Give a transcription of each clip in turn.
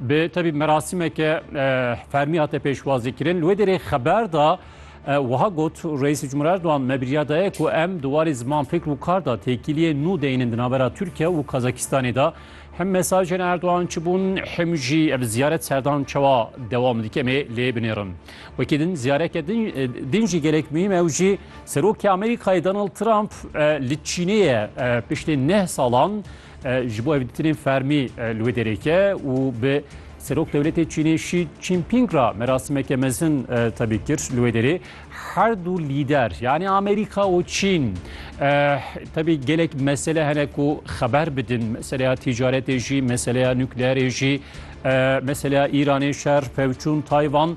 Bi tevî merasîmeke fermî hate pêşwazîkirin. Li wê derê xeber da wiha got Reîsê Cumhurê Erdogan me birîya daye ku em di warê ziman fikr û kar da têkiliyê nû deynin di navbera Tirkiye û Kazakistanê de. Him mesajên Erdogan çi bûn him jî ev ziyaret serdan çawa dewam dike em ê lê binêrin. Wekî din ziyareke din din jî gelek muhîm ew jî Serokê Amerîkayê Donald Trump li Çînê ye piştê neh salan Ji bo hevdîtinên fermî li wê dereke û bi Serok Dewletê Çînê Şî Çînpîng ra merasimeke mezin tevî kir li wê derê her du lîder yanî Amerîka û Çîn tevî gelek mesele hene ku xeber bidin meseleya tîcaretê jî meseleya nukleerê jî meseleya Îranê şer pevçûn Tayvan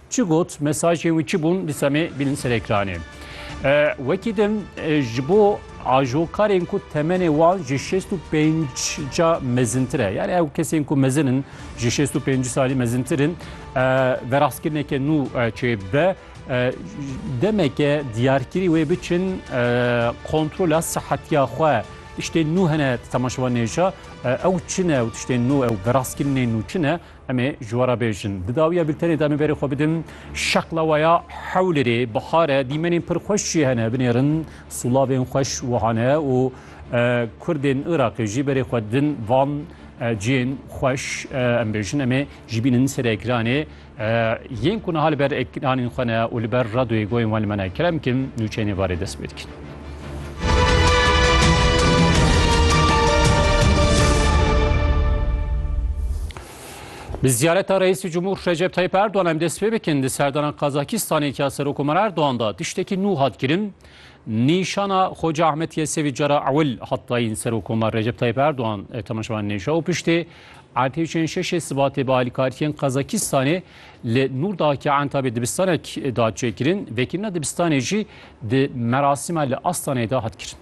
Çi got, mesajên wî çi bûn dîsa me bînin ser ekranê. Wekî din ji bo ajokarên ku temenê wan ji şêst û pênc ca mezintir e. Yani ew kesên ku mezin in ji şêst û pêncî salî mezintir in verastkirineke nû çê bibe. Demeke diyarkirî wê biçin kontrola sihetiya xwe. Tiştên nû hene temaşevan nêşa ew çin e û tiştên nû ew verastkirinên nû çin e. Em ê ji we re bêjin. Di dawiya bîltenê de em ê berê xwe bidin şeqlewaya hewlêrê. Bihar e, dîmenên pir xweş jî hene. Binêrin sûlavên xweş wiha ne û Kurdên Iraqê jî berê xwe didin van cihên xweş. Em bêjin em ê jî bînin ser ekranê. Yên ku niha li ber ekranên xwe ne û li ber radyoyê goyên wan li me ne, kerem bikin nûçeyên êvarê dest pê dikin. Bi ziyareta Reîsî Cumhur Recep Tayyip Erdogan em dest pê bikin di serdana Qazakistanê ke Serokomar Erdogan da tiştekî nû hat kirin. Nîşana Xoca Ahmet Yesevî cara ewil hat dayîn Serokomar Recep Tayyip Erdogan temaşevan nêşa û piştê ertêçên şeşê sibatê bi alîkariyên Qazakistanê li Nûrdakê Entabê dibistanek da çêkirin. Vekirina dibistanê jî Di merasîma li Astaneyê de hat kirin.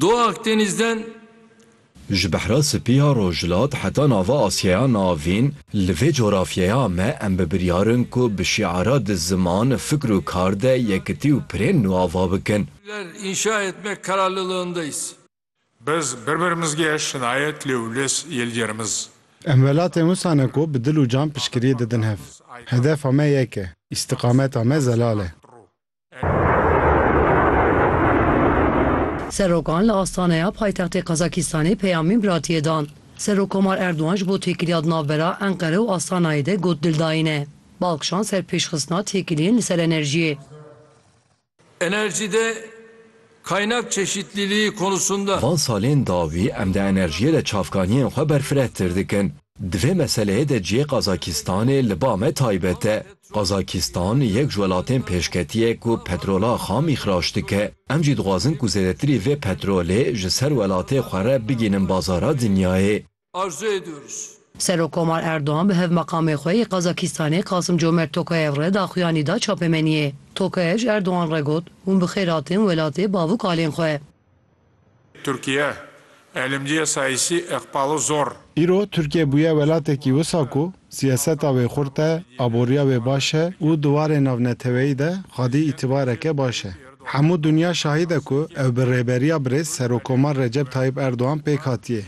Do Akdenîzden. Ji Behra Spî ya Rojhilat heta nava Asyeya Navîn, li vê cografyeya me em bi biryar in ku bi şîara di ziman, fikr û kar de yekitî û pirên nû ava bikin. Ler inşa etmek kararlılığındayız. Biz berber mizgê şinayet lê wles yelger miz. Em welatên wisa ne ku bi dil û can piştgiriyê didin hev. Hedefa me yek e. Îstiqameta me zelal e. Serokan li astaneya paytextê Qazakistanê peyamên biratiyê dan. Serokkomar Erdogan ji bo têkiliya di navbera Enqere û Astanayê de got dildayîn e. Bal kişand ser pêşxistina têkiliyên li ser enerjiyê. Enerjide kaynak çeşitliliği konusunda. Van salên dawî em di enerjiyê de çavkaniyên xwe berfirehtir dikin. Di vê meseleyê de cihê Qazakistanê li ba me taybet e. Qazakistan yek ji welatên pêşketî ye ku petrola xam îxrac dike. Em jî dixwazin ku zêdetirî vê petrolê ji ser welatê xwe re bigihînin bazara dinyayê. arzu ediyoruz. Serokkomar Erdogan bi Hevmeqamê xwe yê Qazakistanê Qasimcomert Tokayev re daxuyanî da çapemeniyê. Tokayev ji Erdogan re got, Hûn bi xêr hatin welatê bavûk alên xwe. Tirkiye, elimciya sayîsî eqbalo zor. Îro Tirkiye bûye welatekî wisa ku Siyaseta wê xurt e, aboriya wê baş e û di warê navneteweyî de xwedî îtîbareke baş e. Hemû dinya şahîd e ku ew bi rêberiya birêz Serokkomar Recep Tayyîp Erdogan pêk hatiye.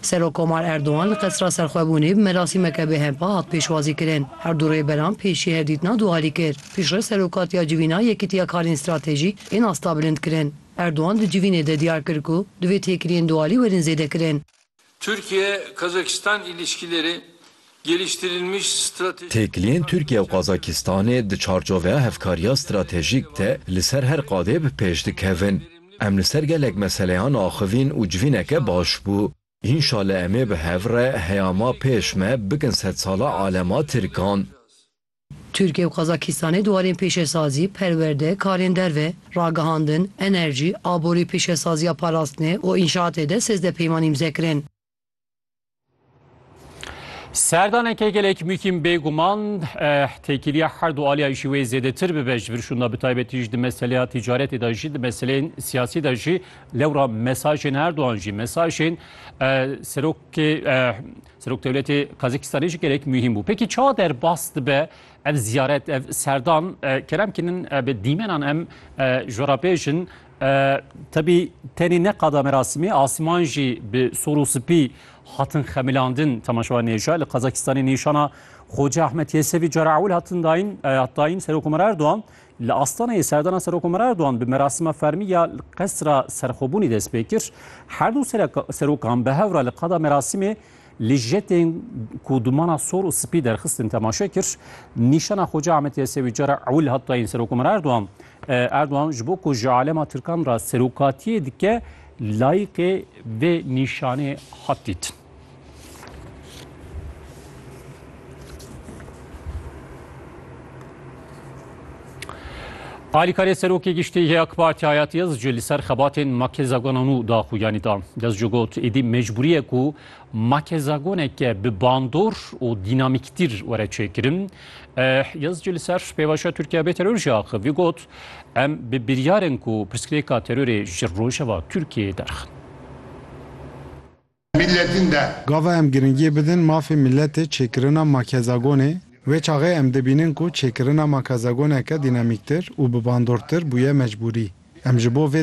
Serokkomar Erdogan li Qesra Serxwebûnê bi merasîmeke bêhempa hat pêşwazîkirin. Her du rêberan pê jî hevdîtina du alî kir. Pîşre Serokatiya Civîna Yekîtiya Karên Stratejîk ên astabilindkirin. Erdogan di civînê de diyar kir ku divê têkiliyên du alî werin zêdekirin. Türkiye-Kazakistan ilişkileri geliştirilmiş stratejik Têkiliyên Tirkiye û Kazakistanê di çarçoveya hevkariya stratejîk de li ser her qadê bi pêş dikevin. Em li ser gelek meseleyan axivîn û civîneke baş bû. Înşale em ê bi hev re heya ma pêş me bikin sedsala alema Tirkan. Tirkiye û Qazakîstanê di warên pêşesazî, perwerde, karên derve, ragihandin, enerjî, aborî, pêşesaziya parastinê û înşaatê de sêzdeh peyman îmze kirin. Serdaneke gelek muhîm bê guman têkiliya her du aliyan jî wê zêdetir bibe ji vir şûnda bi taybetî jî di meseleya tîcaretê de jî di meseleyên siyasî de jî lewra mesajên her duan jî mesajên serokê Seroktewletê Qazîkistanê jî gelek muhîm bû. Pêkî çawa derbas dibe ev ziyaret, ev serdan kerem kinin bi dîmenan em ji we re bêjin. Tebî tenê ne qada merasimê asiman jî bi sor û sipî hatin xemilandin temaşewa nêja li Qazakistanê nîşana Xoca Ahmet Yesevî cara ewil hatin dayîn hat dayîn Serokomar Erdogan Li Astanayê serdana Serokomar Erdogan bi merasima fermî ya Qesra Serxwebûnê dest pê kir. Her du serokan bi hev re li qada merasimê li jetên ku dumana sor û spî derxistin temaşe kir. Nîşana Xoca Ahmet Yesewî cara ewil hat dayîn Serokomar Erdogan. Erdogan ji bo ku ji alema Tirkan re serokatiyê dike layîqê vê nîşanê hat dîtin. Alîkarê Serokê Giştî yê AK Partî Hayat Yildiz jî li ser xebatên makezagonan û daxuyanî da. Yildiz jî got êdî mecbûrî ye ku makezagoneke bi bandor û dînamîktîr were çêkirin. Yildiz jî li ser pêvajoya Tirkiye bê teror jî axif. Vî got em bi biryar in ku pirsgirêka terorê ji rojeva Tirkiyeyê derxin. mîletîn de. Gava em giringiyê bidin mafê mîletê çêkirina makezagonê, wê çaxê em dibînin ku çêkirina makazagoneke dînamîktir û bi bandortir bûye mecbûrî. Em ji bo vê